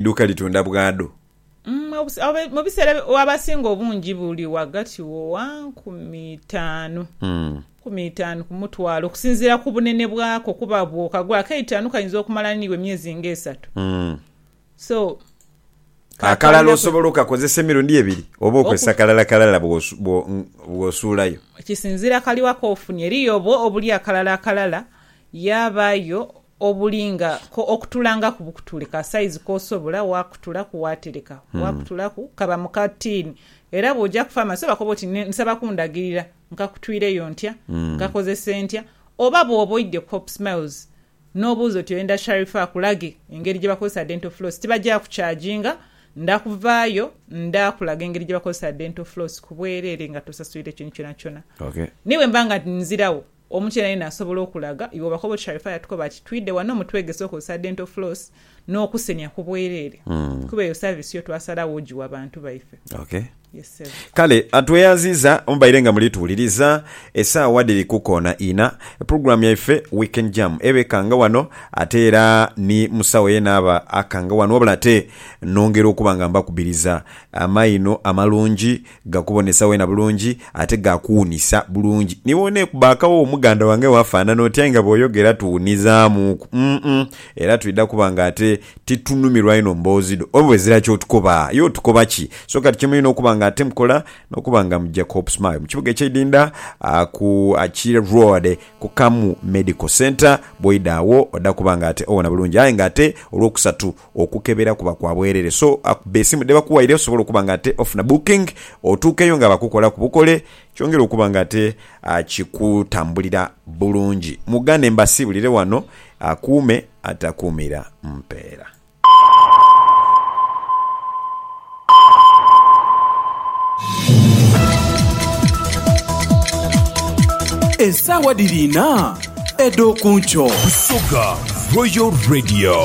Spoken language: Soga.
Duuka litunda bwado. Mu biseera abasinga obungi buli ghagati wo wa nkumi itaanu nkumi itaanu ku mutwalo okusinziira ku bunene bwako kuba bwokagula akaitaanu kayinza okumala niiwe emyezi nga esatu so Akalala osobola okakozesa emirundi ebiri oba okozesa kalala kalala bw'osuulayo. Kisinziira kaliwa k'ofunye. Eriyo obwo obuli akalala akalala yabaayo obulinga ko okutulangaku bukutule ka saizi k'osobola, waakutulaku waatereka, waakutulaku kaba mu ka tiini. Era bw'oja ku faamasi obakoba oti ne, nsaba kundagirira nkakutwireyo ntya, nkakozese ntya. Oba bw'oba oidhye ku Hope Smiles n'obuuza oti oyenda Sharifah akulage engeri gye bakozesa Dental Floss, tibagyakucaaginga, nda kuvaayo nda kulaga engeri gye bakozesa Dental Floss ku bwereere nga tosaswire kintu kyonakyona. Okay. Ni bwe mba nga nziragho Omu ky'enha yenha asobola okulaga, iwe obakoba oti Sharifah yatukoba ati twidhe ghano mutwegese okozesa dental floss n'okusenhya ku bwereere kuba eyo service yo twasalagho ogiwa bantu baife. Okay. Yes ssebo. Kale tweyanziiza mubaire nga muli tuwuliriza. Esaawa dhiri ku koona inha. Program yaife Weekend Jam eba ekanga wano ate era ni mu saawa yena aba akanga wano wabula ate nongera okuba nga mbakubiriza amaino amalungi. Gakubonesa weena bulungi ate gaakuwunisa bulungi. Ni bw'oneekubakawo omuganda wange waafaanana otyo aye nga bw'oyogera tuwunizaamuuku. Umm era twidha kuba nga ate titunumirwa inho mboozi dho oba ezira ky'otukoba. Aye otukoba ki? So kati kye mulina okuba nga ate mukola n'okuba nga muja ku Hopesmile mu kibuga eky'eidinda ku Achille Road ku Kamu Medical Centre. Bw'oidha agho odha kuba nga ate owona bulungi aye nga ate Olwokusatu Okukebera kuba kwa bwerere so akuba esimu dhebakuwaire osobole okuba nga ate ofuna booking otuukeyo nga bakukolaku bukole kyongere okuba nga ate kikutambulira bulungi. Mugane mbasiibulire wano akuume atakuumira mpeera. Esaawa dhiri inha edh'okunkyo. Busoga Royal Radio.